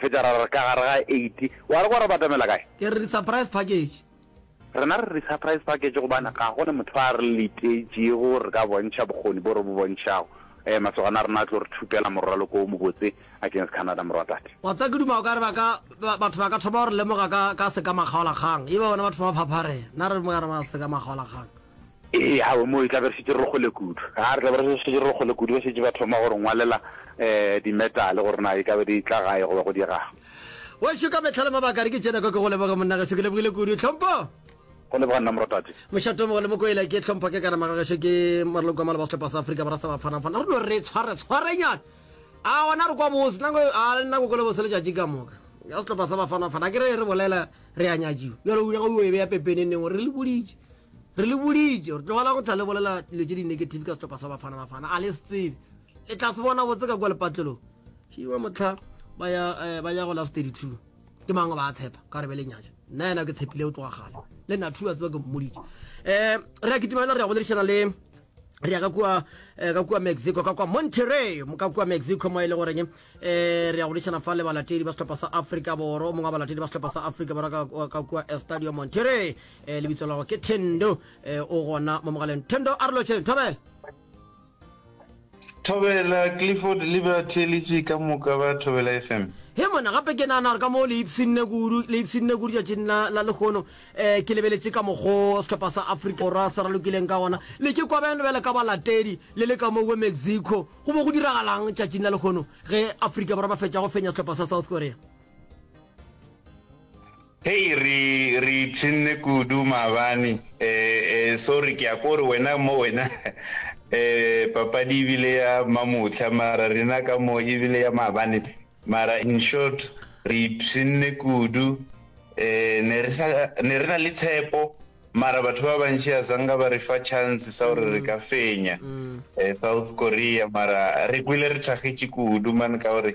Fetša ra re ka gare ga eight. Wa re kwa re batamela kae? Ke re di-surprise package. Rena re re di-surprise package gobane ga go na motho a re letetšego gore re ka bontšha bokgoni bo re bo bontšhago. Ee, masogana a rena a tlo re thupela moraloko wo mobotse against Canada, morwatate. Wa tseba, ke duma o ka re ba ka, ba, batho ba ka thoma go re lemoga ka, ka sekamakgaolakgang. E ba bona ba thoma go phapharea. Na re re mo ka re ba sekamakgaolakgang. Ee, aowe, moo e tla be re šetše re kgole kudu. A re tla be re šetše re kgole kudu, ba šetše ba thoma go re ngwalela um dimetale gore na e ka be di tla gae goba go diega'ng. Weso ka mehla le mabaka re ke tšena kwa ke go leboge monna geso ke lebogile kudu Tlhompho. Go leboga nna morotate. Mošato mogolo mokoela ke Tlhompho ke kana maga geso ke maroloko a maloba sehlopha sa Afrika Borwa sa Bafana Bafana re no re tshware tshwarenyana a gona re kwa bose nako a le nako kole bose letšatši ka moka ya sehlopha sa Bafana Bafana ke re re bolela re a nyatšiwa bjalo o nyaka o e beya pepene neng gore re le boditše Re le boditše gore tlogela go tla le bolela dilo tše di-negative ka sehlopha sa Bafana Bafana. A le se tsebe. Le tla se bona botse ka kwa lepatlelong. Šiwa motlha ba ya eh, ba ya go last 32. Ke mang ba a tshepa ka re be le nyatša. Nna yena ke tshepile o tloga gale. Le nna thuwa tseba ke mmoditše. Eh re a kitima le re ya go lerišana le re ya ka kua eh, ka kua mexico ka kua monterey ka kua mexico mo e le goreng um eh, re ya go lešana fa le balatedi ba setlhopha sa africa boro mongwe wa balatedi ba setlhopha sa africa boro ka kua eh, stadium monterey eh, lebitso lago ke thendo eh, o gona mo mogaleng thendo a re lotšheng thobela thobela clifford liberty le tše ka moka ba thobela fm he mona gape ke nana gore ka mo le ipsinne kudu le ipsinne kudu tšatšing la la lekgono um eh, ke lebeletse ka mokgo setlhopha sa africa borwa se ralokileng ka gona le ke kwa beng lebele ka balatedi le le ka mo we mexico go bo go diragalang tšatšing la lekgono ge africa borwa ba fetša go fenya setlhopha sa south korea Hei re re ipshinne kudu maabane eh eh sorry ke a ko re wena mo wena eh papadi e bile ya mamotlha mara rena ka mo e bile ya maabane mara in short re ipshinne kudu eh ne re sa ne re na le tshepo mara batho ba bantši a sanga ba re fa chance sa gore re ka fenya eh South Korea mara re kwile re thagetše kudu man ka gore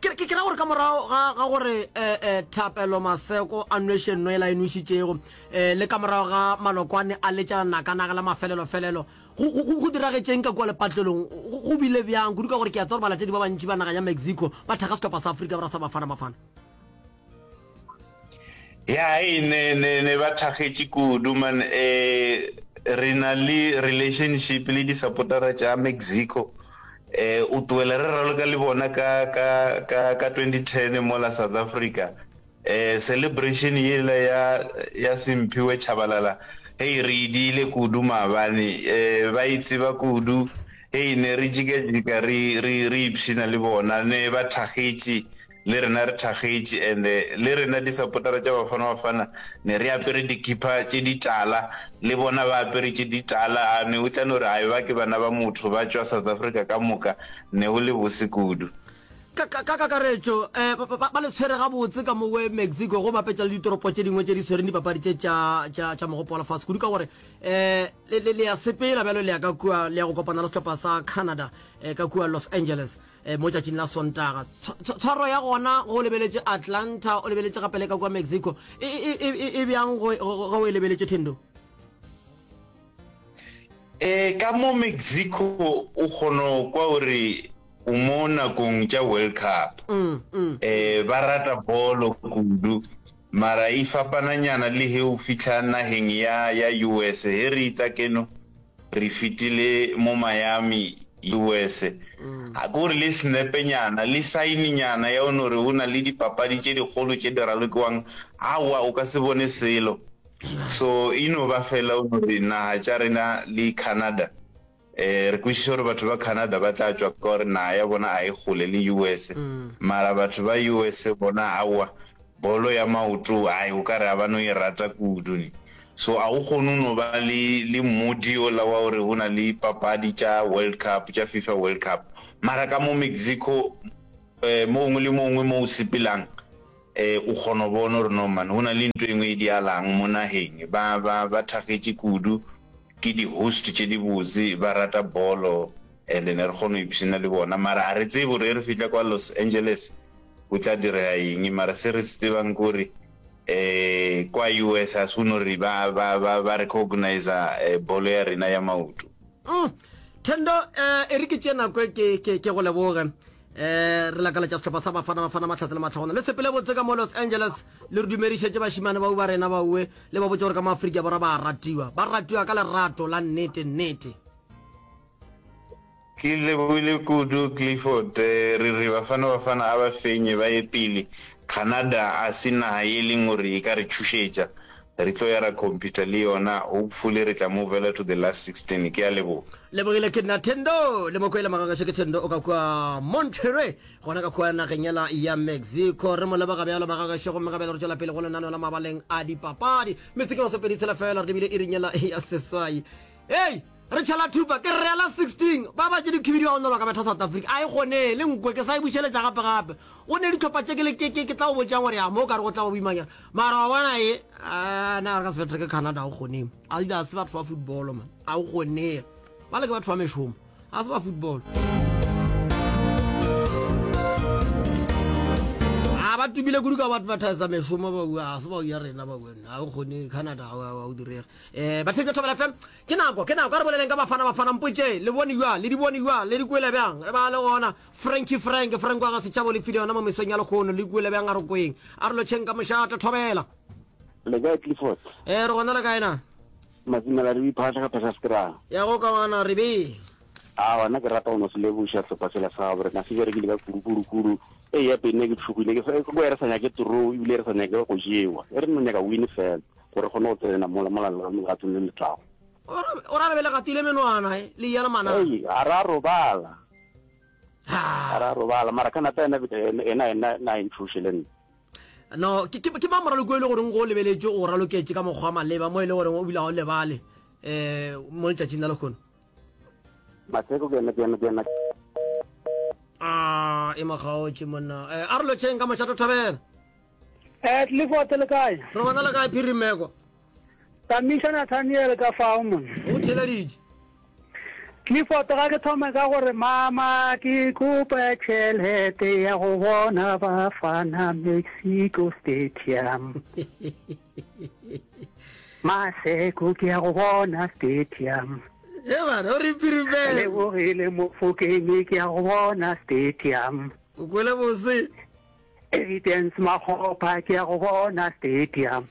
ke ke ra gore ka morago ga ga gore eh, eh, thapelo maseko a nwešeng no ela e nwešitšego eh, le ka morago ga malokwane a letša nakanaka la mafelelofelelo go- go go- go diragetšeng ka kua lepatlelong go go bile bjang kudu ka gore ke a tsa gore balatedi ba bantši ba naga ya mexico ba thekga setlhopha sa aforika borwa sa bafana bafana ya e ne ne ne ba thagetše kudu man eh re na le relationship le di supportera tša Mexico eh o tsoela re raloka le bona ka ka ka ka 2010 mo la South Africa eh celebration ye la ya ya Simphiwe Chabalala hey re idile kudu maabane eh ba itseba e kudu hey ne re jika jika re re re ipshina le bona ne ba thagetše le rena re thakgetše and le rena di supportera tša Bafana Bafana ne re apere dikipa tše di tala le bona ba apere tše di tala a ne o tla no re a eba ke bana ba motho ba tšwa South Africa ka moka ne go le bose kudu. Ka ka kakaretšo ba ba ba le tshwere gabotse ka mo we Mexico go bapetša le ditoropo tše dingwe tše di tshwereng dipapadi tše tša tša tša mogopo wa lefase kudu ka gore le le le ya sepela bjalo le ya ka kua le ya go kopana le sehlopha sa Canada ka kua Los Angeles Eh, mo tšatšing la sontaga tshwaro ya gona go lebeletše atlanta o lebeletše gape le ka kwa mexico e, e, e, e bjang ge o e lebeletše thendo um ka mo mexico o kgono kwa gore o mo nakong tša world cup um ba rata bolo kudu mara e fapananyana le he o fitlha nageng ya ya us he re ita keno Re fetile mo Miami, US. Ga ke o re le senepenyana, le saininyana ya o no re o na le dipapadi tše dikgolo tše di ralokiwang, aowa, o ka se bone selo. So e no ba fela o no re naga tša rena le Canada, um re kwešiša gore batho ba Canada ba tla tšwa ka gore naga ya bona ga e kgole le US, mara batho ba US bona aowa. Bolo ya maoto ai o ka re a ba no e rata kudu ne. So a o kgone o no ba le le mmodi ola wa gore go na le papadi tša World Cup tša FIFA World Cup mara ka mo Mexico um mo gongwe le mo gongwe mo o sepelang um o kgona go bona gore no man go na le ntho e nngwe e dialang mo nageng. Ba ba ba thagetše kudu ke di host tše di botse ba rata bolo and ne re kgona go ipshina le bona mara a re tsebe gore e re fihla kwa Los Angeles go tla direga eng mara se re se tsebang kore um kwa us ga se go no re ba, ba, ba, ba recogniza um bolo ya rena ya maoto Mm. Thendo eh, e re ke tše nako e ke, ke, ke go leboge eh, re lakaletša sehlopha sa bafana bafana mahlatse le matlhagona le sepele botse ka mo los angeles le re dumedišetše bašimane bau ba rena baue le ba botse gore ka mo afrika borwa ba ratiwa ba ratiwa ka lerato la nnete nnete Ke lebohile kudu Clifford re re Bafana Bafana a ba fenye ba ye pele, Canada a se naha ye leng gore e ka re tšhošetša, re tlo ya ra competa le yona, hopefully re tla movela to the last 16. Ke a leboga. Lebohile ke nna Thendo le mo kwele magagešo ke Thendo o ka kua Monterrey gona ka kua nageng yela ya Mexico re mo leboga bjalo magagešo gomme gabjale re tšwela pele go lenaneo la mabaleng a dipapadi metsing ya masopedi tshela fela re lebile iring yela ya seswai Hei! Re tšhela thupa, ke rreela 16, ba ba tše dikhibidiwa go no ba ka betha South Africa, a e gone, le nkwe, ke sa e bušeletša gape gape. Go ne ditlhopha tše ke le ke, ke, ke tla o botšang gore ya mo ka re go tla ba boimanyana. Mara wa bona e, ah, na re ka se bethe ke Canada, a o gone. A di a se batho ba football, man. A o gone. Ba le ke batho ba mešomo. A se ba football. A ba tumile kudu ka batho ba thaisa mešomo ba bua, a se ba ya rena ba bua. A o gone Canada, a o direge. Eh, batshebi ba thobela fm ke nako ke nako a re boleleng ka bafana bafana mpotse le bone jwa le di bone jwa le di kuela bjang e ba le gona franki frank frank wa ga setšhabo le file yona mo mesong ya lekgono le kuela bjang a re kweng a re lotšheng ka mošata thobela le kae clifford eh re gona le kae na masimela re iphatlha ka phasa sekrang ya go ka wana re be a gona ke rata go no se leboša tlhopa sela sa gabo rena se jere ke leka kudukudukudu e ya pene ke tshogile ke ko e re sa nyake toro ebile e re sa nyake go jewa e re no nyaka win fela Go re kgone go tsena mola molaleng wa legato le le tlago. O ra re be le gatile menwana e le yela mana. Ei, a ra robala. A ra robala mara ka nata ena ena ena na inthuše le nna. No, ke ke ba moralo go ile gore go lebeletše go raloketše ka mokgwa maleba mo ile gore o bile ga o lebale eh mo letšatšing la lekhono. Matseko ke ena ke ena ke ena. Ah, e magaotše monna. Eh, a re lotšeng ka mošato thabela. Eh, Clifford le kae? Re gona le kae phiri meko? Tamisha Nathaniel ka fao mon. Go theleditše. Clifford ga ke thome ka gore mama ke kopa tšhelete ya go bona Bafana Mexico Stadium. Maseko ke ya go bona stadium. E bana o re phiri meko. Le bogile mofokeng ke ya go bona stadium. O kwele bose. Evidence Makgopa ke ya go bona stadium.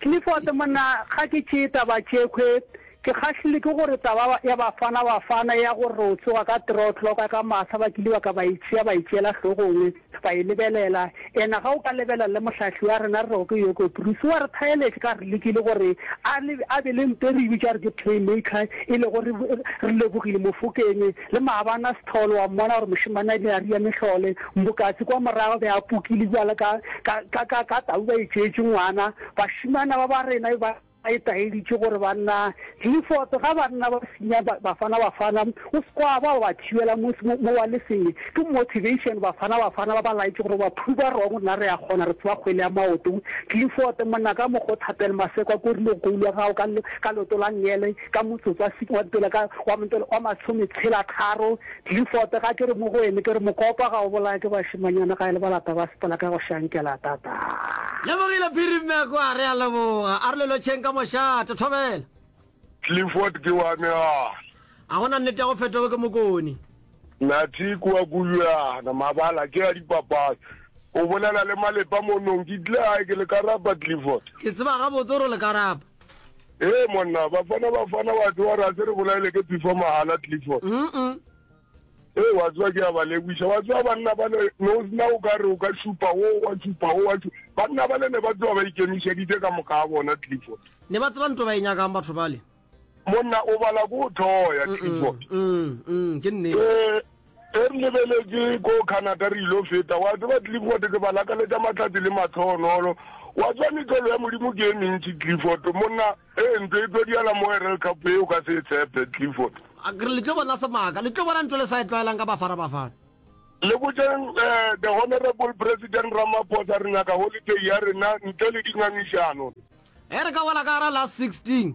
Clifford monna ga ke tšee taba tšekhwe ke kgahlilwe ke gore taba ya Bafana Bafana ya gore o tsoga ka three o'clock ka masa ba kile ba ka ba e tšea ba e tšeela hlogongwe ba e lebelela ena ga o ka lebelela le mohlahli wa rena re rego ke Yoko Bruce wa re thaeletše ka re lekile gore a be le mpe re bitša re ke playmaker e le gore re lebogile mofokeng Le maabana Sithole wa mmona gore mošemane ne a ria mehlole. Mbokatse kwa morago be a pukile bjalo ka, ka, ka, ka, ka tau ba itšeetše ngwana. Bašemana ba ba rena be ba etaeditše gore banna Clifford, ga banna ba senya ba, Bafana Bafana, o se kwa ba, ba ba thibela mo, mo, mo wa le senge. Ke motivation Bafana Bafana ba ba laetše gore ba prove wrong rena re a kgona, re tseba kgwele ya maoto. Clifford, monna ka mokgo Thapelo Maseko a korilego koulu ya gago ka, ka leoto la ngele, ka motsotso wa six wa mpela ka wa mpela wa masome tshela tharo Clifford ga ke re mo go wene ke re mokopa ga o bolaya ke bashimanyana ga e le balata ba sepela ka go shankela tata. Lebogile Phiri Mmekwa re a leboga. A re lelotšheng ka mošate. Thobela. Clifford ke wa me a. A go na nnete ya go fetoge ke mokoni? Nathi ke wa Kujwana, mabala ke a dipapadi. O bolela le Malepa mo nong. Ke tlile gae ke le ka rapa Clifford. Ke tseba gabotse gore o le ka rapa. Ee monna bafana bafana wa tsewa re a se re bolaele ke before mahala clifford ee wa tsewa ke ya ba leboisa wa tsewa banna ba le no sena o ka re o ka šupa o wa šupa o wa banna ba le ne ba tsewa ba ikemišeditse ka moka a bona clifford ne ba tseba nto ba e nyakang batho bale monna o bala ko o thoya clifford ke nnete Ge re lebeletše ko Canada re il'o feta, wa tseba, Clifford, ke ba lakaletša mahlatse le mahloohonolo. Wa tseba, mehlolo ya Modimo ke e mentši, Clifford, monna. Ee, ntlo e tlo diala mo Herald Cup ye, o ka se e tshepe, Clifford. Ke re, le tlo bona semaka, le tlo bona ntho e le sa e tlwaelang ka Bafana Bafana. Le botšeng, eh, The Honourable President Ramaphosa, re nyaka holiday ya rena ntle le dingangišano. Ge re ka boela ka hara la 16.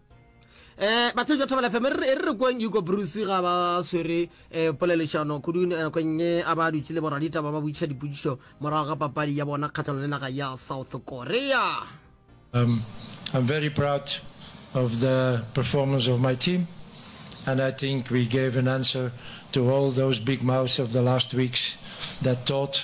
eh batse jo thobela fm re re kweng yuko bruce ga ba swere eh polelešano kudu eh, nakong ye a ba dutse le boradita ba ba butša dipudišo morago ga papadi ya bona kgatlhanong le naga ya south korea um, i'm very proud of the performance of my team and i think we gave an answer to all those big mouths of the last weeks that thought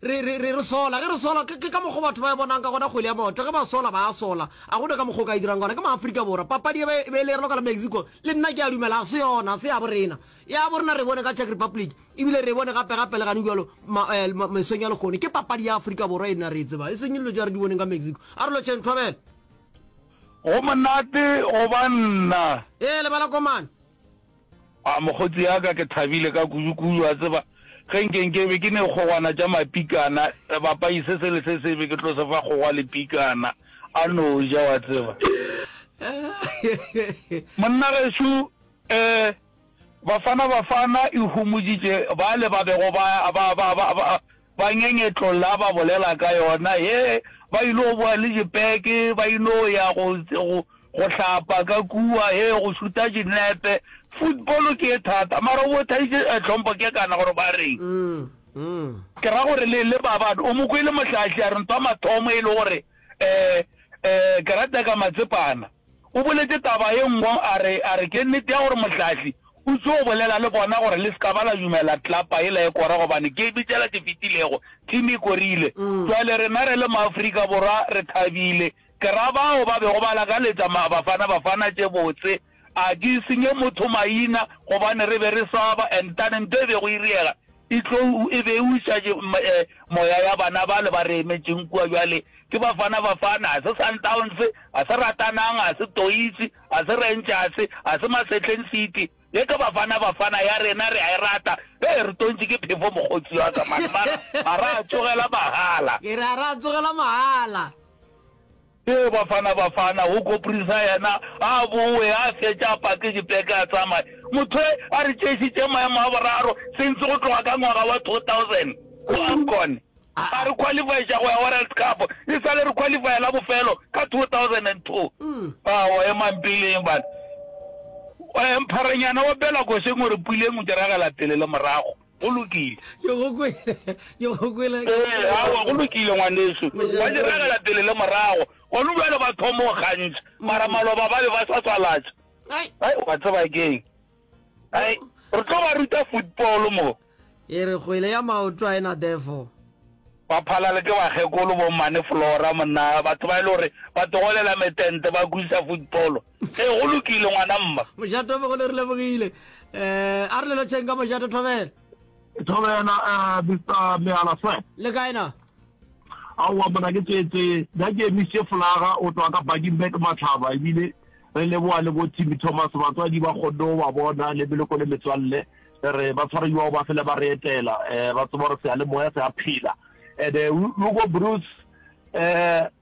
Re, re, re, re sola. Ge re sola, ke, ke ka mokgwa batho ba e bonang ka gona kgwele ya maoto. Ge ba sola, ba a sola. A gona ka mokgwa o ka e dirang gona. Ke Maafrika Borwa. Papadi e be, e be e le ka la Mexico. Le nna ke a dumela, ga se yona, ga se ya bo rena. Ya bo rena re bone ka Czech Republic. Ebile re bone gape, gape le gane bjalo, ma, eh, ma, mesong ya lekgone. Ke papadi ya Afrika Borwa e nna re e tsebang. E seng dilo tša re di boneng ka Mexico. A re lotšheng, thobela. Go monate go ba nna. Ee, lebala komane. A mokgotsi ya ka, ke thabile ka kudukudu, wa tseba, ge nke nke be ke ne kgogwana tša mapikana, sebapai se sele se sebe ke tlo se fa kgogwa le pikana, a no ja, wa tseba. Monnagešo, eh, Bafana Bafana e humoditše bale ba bego ba, ba, ba, ba, ba, Ba ngengetlolla ba bolela ka yona, he, ba ilo boa le dipeke, ba ilo ya go, go, go hlapa ka kua, he, go šuta dinepe. Football ke ye thata, mara o bothaditše, eh, Tlhompho, ke kana gore ba reng. Ke ra gore le, le ba bana, o mo kwele Mohlahli a re ntho ya mathomo e le gore, eh, eh, ke rata ka Matsepana. O boletše taba ye nngwe, a re, a re, Ke nnete ya gore Mohlahli o tšo bolela le bona gore le se ka ba la dumela tlapa yela e kora gobane ke bitšela tše fetilego, team e korile. Bjale rena re le maAfrika Borwa re thabile. Ke ra bao ba bego ba lakaletša ma, Bafana Bafana tše botse. A ke senye motho maina gobane re be re swaba and tane nto e bego e riega E tlou e be e uša moya ya bana bale ba re emetšeng kua bjale. Ke Bafana Bafana, ga se Sundowns, ga se Ratanang, ga se Toise, ga se Rangers, ga se Masetleng City. Ye ke Bafana Bafana ya rena, re a e rata. Hee, re tontše ke phefo mokgotsi wa ka mane. Mara, mara a tsogela mahala. Ke re a re a tsogela mahala. Ee, Bafana Bafana, go koprisa yena, a bowe, a fetša a pake dipeke a tsamaye. Motho we a re tšeišitše maemo a boraro since go tloga ka ngwaga wa 2000 go Afcon. A re qualifyiša go ya World Cup e sa le re qualifya la bofelo ka 2002. Aowa, emang peleng bana. Mpharenyana opela košeng o re puleng o diragela pele le morago. Go lokile. Yo go kwele, yo go kwele. Ee, aowa, go lokile, ngwanešu. Ba diragela pele le morago. Gona bjale ba thoma go kgantšha, mara maloba ba be ba sa tswalatša. Ai, wa tseba ke'ng? Ai, re tlo ba ruta football mo. E re kgwele ya maoto a e na defo. Ba phalale ke bakgekolo, bo Mmane Flora, monna, batho ba e le gore ba togolela metente, ba kwisa football. Ee, go lokile, ngwana mma. Mojato be go le re lebogile. Eh, a re lelotšheng ka Mojato Thobela. Thobela, eh, Mr. Meala sir. Le kae na? Aowa mona ke tsetse, ja ke emise folaga o tloa ka Buckingbek Matlhaba ebile re leboa le bo Timmy Thomas batswadi ba kgonne go ba bona le meloko le metswalle re ba tshwareiwa ba fele ba re etela um ba tseba gore seyalemoya se a phela and-e eh, hugo bruce um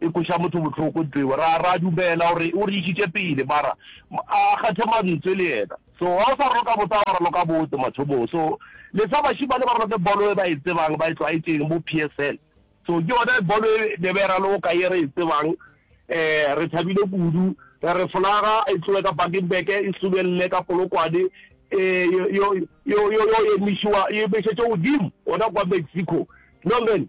E kweša motho bohloko ntlo yeo. Ra, ra dumela gore O re išitše pele, mara A a kgethe mantswe le yena. So, ga o sa roka botse ga ba raloka botse mathomong. So, le fa bašemane ba raloke bolo e ba e tsebang, ba e tlwaetšeng mo PSL. So, ke yona bolo e ne ba e raloka ye re e tsebang. Um, re thabile kudu. Re re folaga e tloge ka Bakenberg, e sulwelele ka Polokwane, e yo, yo, yo, yo emišiwa, e emešetšwe godimo gona kwa Mexico. No, man.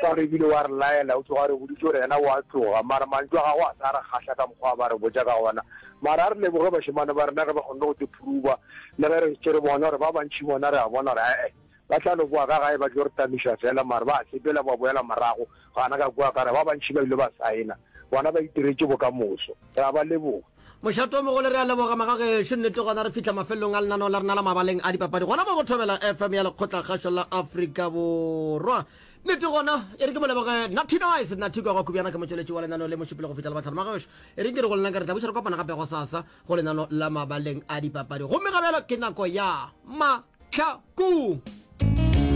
Sa re ebile wa re laela, o tloga a re boditše gore yena o a tloga, mara mantšu a gagwe a sa re kgahla ka mokgwa a ba re botša ka ona. Mara a re leboge bašemane ba rena ge ba kgonne go tlo phuruba, le ge re tšere bona gore ba bantši bona re a bona gore ae, ba tla no boa ka gae ba tlo re tamiša fela, mara ba sepela ba boela morago, gana ka kua ka re ba bantši ba ile ba saena, bona ba itiretše bokamoso. Re a ba leboga. Mošate o mogolo re a leboga magagešo nnete gona re fihla mafelelong a lenaneo la rena la mabaleng a dipapadi gona mo go thobela fm ya lekgotlakgašo la afrika borwa nnete gona e re ke mo leboge natinoise nathiko go khubjana ke motšweletši wa lenaneo le mošupile go fihla le batlhano magagešo e reng ke re go lena ka re tla buša re kopana gape go sasa go lenaneo la mabaleng a dipapadi gomme gabjalo ke nako ya matlhakong